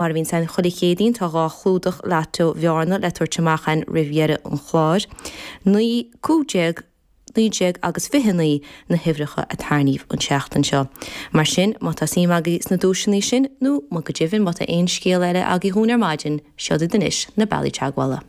Mar a bhíonn ann chuile Chéadaoin, tá dhá chlúdach Lotto Bhearna le tabhairt amach againn roimh dheireadh an chláir. Naoi, cúig déag, naoi déag agus fiche naoi na huimhreacha a tarraingíodh an tseachtain seo. Mar sin, má tá suim agaibh sna duaiseanna sin, nó go deimhin má tá aon scéal eile agaibh dhúinn ar maidin, seo iad anois na bealaí teagmhála.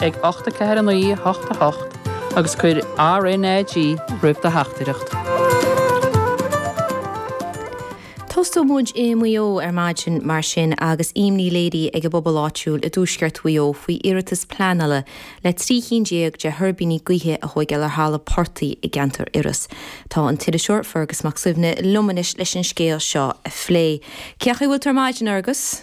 ag 8 4 9 8 8 agus cuir RNAG roimh do theachtaireacht. Tosóidh muid i Maigh Eo ar maidin mar sin agus imní léirithe ag an bpobal áitiúil i dtuaisceart Mhaigh Eo faoi iarratas pleanála le trí cinn déag de thuirbíní gaoithe a thóigeáil ar thalamh portaigh i gceantar Iorrais. Tá an t-iriseoir Fergus Mac Suibhne liom anois leis an scéal seo a phlé. Cén chaoi a bhfuil tú ar maidin, a Fherghais?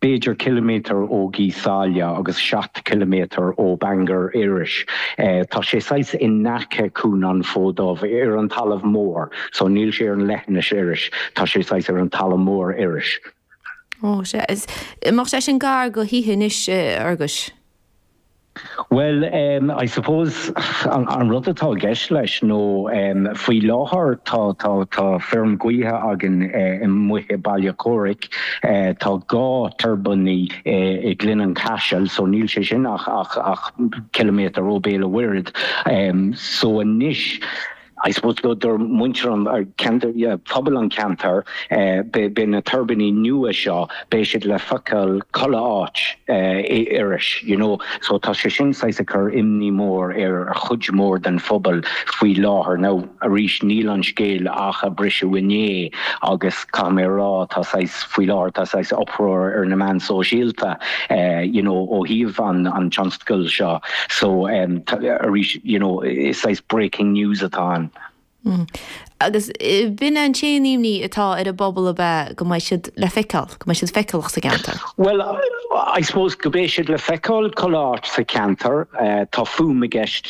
b'fhéidir ciliméadar ó Ghaoth Sáile agus seacht ciliméadar ó Bangor, Iorrais. Tá sé saghas in aice Cuan an Fhóid Duibh, ar an talamh mór, so níl sé ar an leithinis Iorrais, tá sé saghas ar an talamh mór Iorrais. Ó, bheadh sé sin gar do thithe anois, a Fherghais. Bhuel, em, I suppose, an, an rud atá i gceist leis nó, em, faoi láthair tá, tá, tá feirm ghaoithe againn, eh, amuigh i Béal Átha Chomhraic, eh, tá dhá tuirbíní i, i Gleann Chaisil, so níl sé sin ach, ach, ach ciliméadar ó Bhéal a' Mhuirthead, em, so anois, I suppose do do muintir an phobail an ceantar beidh beidh na tuirbíní nua seo beidh siad le feiceáil chuile áit in Iorras you know so tá sé sin saghas ag cur imní mór ar chuid mhór den phobal faoi láthair now arís níl an scéal ach ag briseadh inné agus caithfidh mé a rá, tá saghas, faoi láthair, tá saghas uproar ar na meáin sóisialta, you know, ó thaobh an an tionscail seo, so, arís, you know, is saghas breaking news atá ann. Agus b'in an t-aon imní atá ar an bpobal ab ea go mbeidh siad le feiceáil, go mbeidh siad feiceálach sa gceantar? Well, I suppose go mbeidh siad le feiceáil chuile áit sa cheantar, tá fadhb i gceist.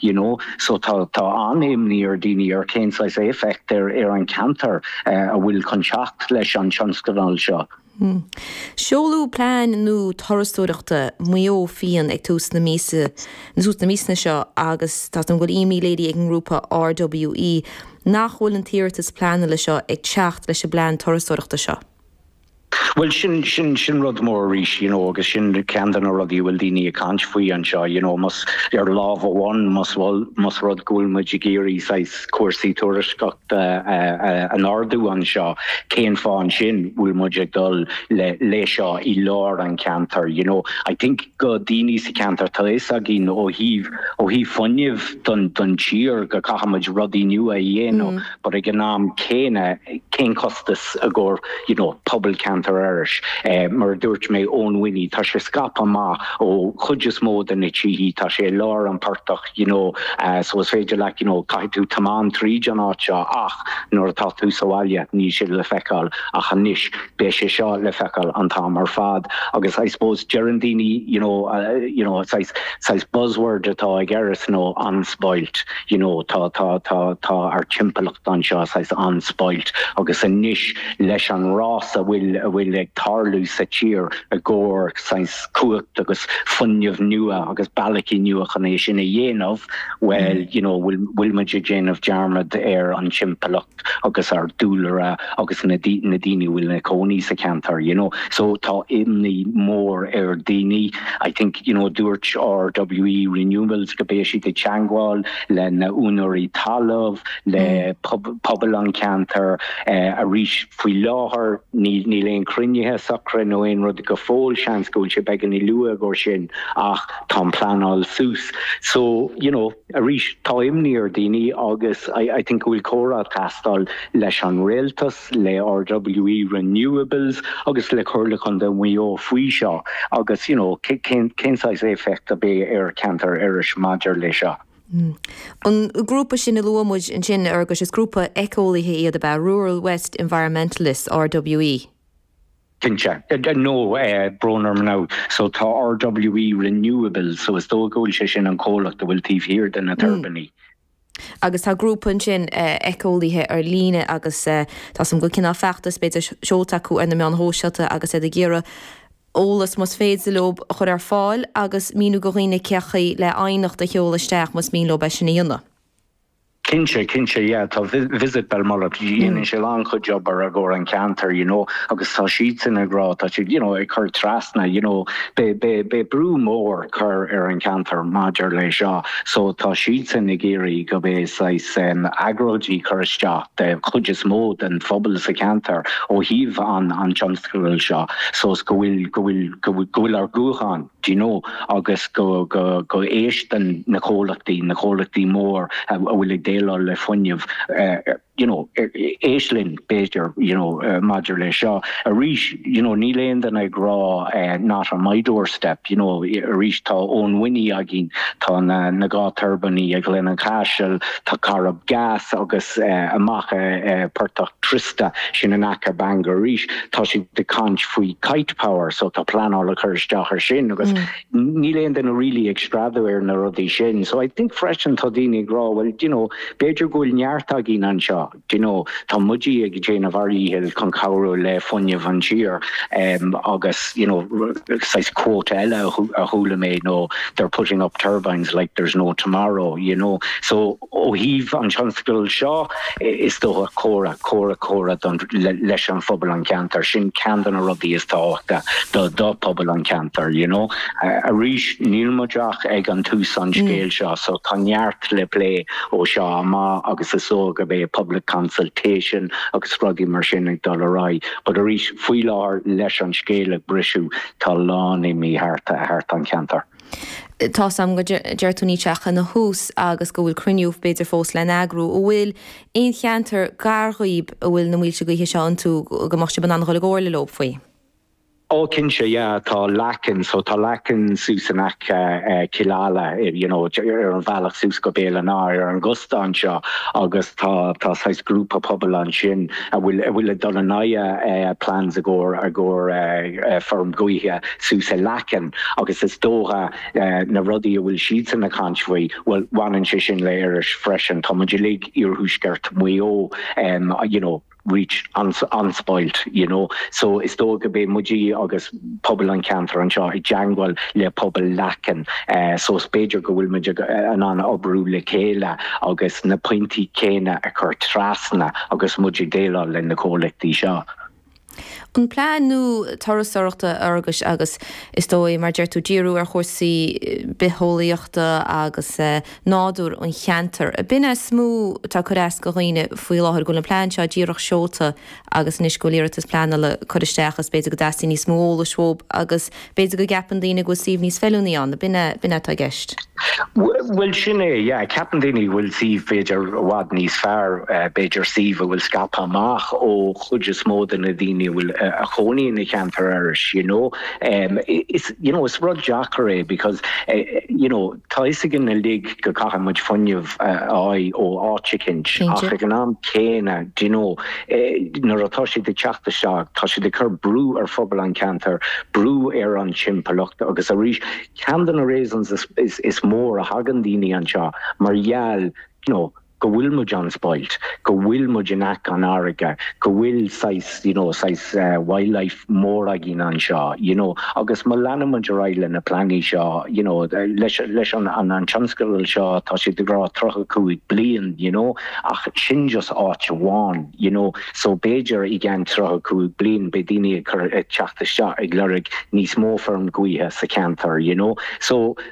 you know so tá tá an-imní ar daoine ar cén saghas éifeacht ar ar an ceantar a bhfuil chun teacht leis an tionscadal seo. Seoladh plean nua turasóireachta Mhaigh Eo Fhiáin ag tús na míosa tús na míosa seo agus tá an bhfuil imní léirithe ag an ngrúpa RWE nach bhfuil an t-iarratas pleanála seo ag teacht leis an bplean turasóireachta seo. Bhuel sin, sin, sin rud mór arís, you know agus sin ceann de na rudaí a bhfuil daoine ag caint faoi anseo, you know más, ar lámh amháin más, más rud go bhfuil muid ag iarraidh saghas cúrsaí turasóireachta a, a, a ardú anseo, cén fáth ansin bhfuil muid ag dul le, leis seo i lár an cheantair, you know. I think go daoine sa cheantar tá fhios againn ó thaobh, ó thaobh fuinnimh don, don tír go caithfimid rudaí nua a dhéanamh. but ag an am céanna cén costas i gcomhair you know pobal ceantar Iorrais? Mar a dúirt mé, Oweninny, tá sé scaipthe amach ó chuid is mó de na tithe, tá sé i lár an phortach, you know, so is féidir leat, you know, caithfidh tú tiomáint tríd an áit seo ach nuair atá tú sa bhaile níl sé le feiceáil ach anois beidh sé seo le feiceáil an t-am ar fad agus I suppose deireann daoine you know, you know, saghas, saghas buzzword atá ag Iorras nó unspoilt. you know, tá, tá, tá, tá ár timpeallacht anseo saghas unspoilt agus anois leis an rás a bhfuil, a bhfuil ag tarlú sa tír i gcomhair saghas cumhacht agus fuinneamh nua agus bealachaí nua chun é sin a dhéanamh, well, you know, bhfuil, bhfuil muid ag déanamh dearmad ar an timpeallacht. agus ár dúlra agus na daoine a bhfuil ina gcónaí sa cheantar you know. So tá imní mór ar daoine. I think you know dúirt RWE Renewables go beidh siad ag teangmháil le na úinéirí talaimh, le pobal an cheantair arís. Faoi láthair níl aon cruinnithe socra nó aon rud go fóill, seans go bhfuil sé beagáinín luath i gcomhair sin ach tá an pleanáil suas. So you know. Arís, tá imní ar daoine agus I think go bhfuil comhrá ag teastáil leis an Rialtas, le RWE Renewables agus le Comhairle Contae Mhaigh Eo faoi seo agus you know cén cén saghas éifeacht a bheidh ar Cheantar Iorrais maidir leis seo. An grúpa sin a luaigh muid ansin, Fhergus, is grúpa eiceolaithe iad ab ea, Rural West Environmentalists, RWE? Cinnte. No, brón orm now. So tá RWE Renewables, so is dóigh go bhfuil sé sin an comhlacht a bhfuil taobh thiar de na tuirbíní. Agus tá grúpa ansin eiceolaithe ar líne agus tá a fhios agam go bhfuil cineál feachtas b'fhéidir seolta acu ar na meáin shóisialta agus iad ag iarraidh eolas más féidir leo a chur ar fáil agus míniú do dhaoine cén chaoi le aighneacht a sheoladh isteach más mian leo é sin a dhéanamh. Cinnte, cinnte, yeah, tá Visit Belmullet, déanann sé lán chuid obair i gcomhair an ceantar, you know, agus tá siad sin ag rá, tá siad, you know, ag chur trasna, you know, beidh, beidh, beidh brú mór chur ar an ceantar maidir le seo, so tá siad sin ag iarraidh go beidh saghas um, agróidí chur isteach de chuid is mó den phobal sa cheantar ó thaobh an, an tionscadail seo, so is go bhfuil, go bhfuil, go bhfuil, go bhfuil ár guth ann. do you know, agus go, go, go n-éisteann na comhlachtaí, na comhlachtaí mór a bhfuil ag déileáil le fuinneamh, you know, éist linn, b'fhéidir, you know, maidir le seo. Arís, you know, níl aon duine ag rá not on my doorstep, you know, arís tá Oweninny againn, tá na, na dhá tuirbíní i nGleann an Chaisil, tá Corrib Gas agus amach i bPortach Tris. Tá sin in aice Bangor arís. Tá siad ag caint faoi Kite Power so tá pleanáil ag cur isteach ar sin agus níl aon duine really ag screadadh ar na rudaí sin. So I think freisin tá daoine ag rá bhuel d'you know b'fhéidir go bhfuil neart againn anseo, d'you know tá muide ag déanamh ár dhíchill chun cabhrú le fuinneamh an tír em agus d'you know saghas quote eile a chuala mé nó they're putting up turbines like there's no tomorrow, you know. So. Ó thaobh an tionscadail seo, is dócha, comhrá, comhrá, comhrá do, leis an phobal, an cheantair, sin ceann de na rudaí is tábhachtaí do, do phobal an cheantair, you know. Arís, níl muid ach ag an tús an scéil seo, so tá neart le plé ó seo amach agus is dócha go mbeidh public consultation agus rudaí mar sin ag dul ar aghaidh. But arís, faoi láthair, leis an scéal ag briseadh, tá a lán imní thart, thart an cheantair. Tá's agam go ndeir tú nithe atá ina thús agus go bhfuil cruinniú, b'fhéidir fós le heagrú. An bhfuil aon cheantar gar dhaoib a bhfuil na muilte gaoithe seo iontu go mbeadh sib in ann a dhul i gcomhairle leob faoi? Ó cinnte, yeah, tá Leacain, so tá Leacain suas in aice Cill Ala, you know, ar an bhealach suas go Béal an Átha, ar an gcósta anseo agus tá, tá saghas grúpa pobail ansin a bhfuil, a bhfuil ag dul in aghaidh plans i gcomhair, i gcomhair feirm gaoithe suas i Leacain. Agus is dócha na rudaí a bhfuil siadsan ag caint faoi, bhuel, baineann sé sin le Iorras freisin. Tá muid uilig iarthuaisceart Mhaigh Eo, you know, really unspoilt, you know. So is dóigh go mbeidh muid agus pobal an cheantair anseo i dteangmháil le pobal Leacain. So is b'fhéidir go bhfuil muid in ann oibriú le chéile agus na pointí céanna a chur trasna agus muid ag déileáil leis na comhlachtaí seo. An plean nua turasóireachta Iorrais agus, is dóigh, mar a deir tú, díriú ar chúrsaí bitheolaíochta agus nádúr an cheantair. B'in is mó atá ag cur as do dhaoine faoi láthair, go bhfuil an plean seo díreach seolta agus anois go bhfuil iarratas pleanála curtha isteach is b'fhéidir go dteastaíonn níos mó eolais uathub agus B'fhéidir go gceapann daoine go bhfuil suíomh níos feiliúnaí ann, nó ab in é, ab in é atá i gceist? Bhuel sin é, yeah, ceapann daoine go bhfuil suíomh b'fhéidir i bhfad níos fearr, b'fhéidir suíomh a bhfuil scaipthe amach ó chuid is mó de na daoine a bhfuil ina chónaí sa cheantar arís, you know. Is, you know, is rud deacair é because, you know, Tá a fhios againn uilig go gcaithfidh muid fuinneamh a fháil ó áit eicint ach ag an am céanna do you know nuair atá siad ag teacht isteach tá siad ag cur brú ar phobal an cheantair, brú ar an timpeallacht agus arís ceann de na reasons is mór a thagann daoine anseo mar gheall you know. go bhfuil muid an spoilt, go bhfuil muid in aice an fharraige, go bhfuil saghas, you know, saghas wildlife mór againn anseo, you know, agus má leanann muid ar aghaidh le na pleananna seo, you know, leis, leis an, an, an tionscadal seo, tá siad ag rá tríocha cúig bliain, you know, ach sin just áit amháin, you know, so b'fhéidir i gceann tríocha cúig bliain beidh daoine ag cur, ag teacht isteach ag lorg níos mó feirm gaoithe sa cheantar, you know, so.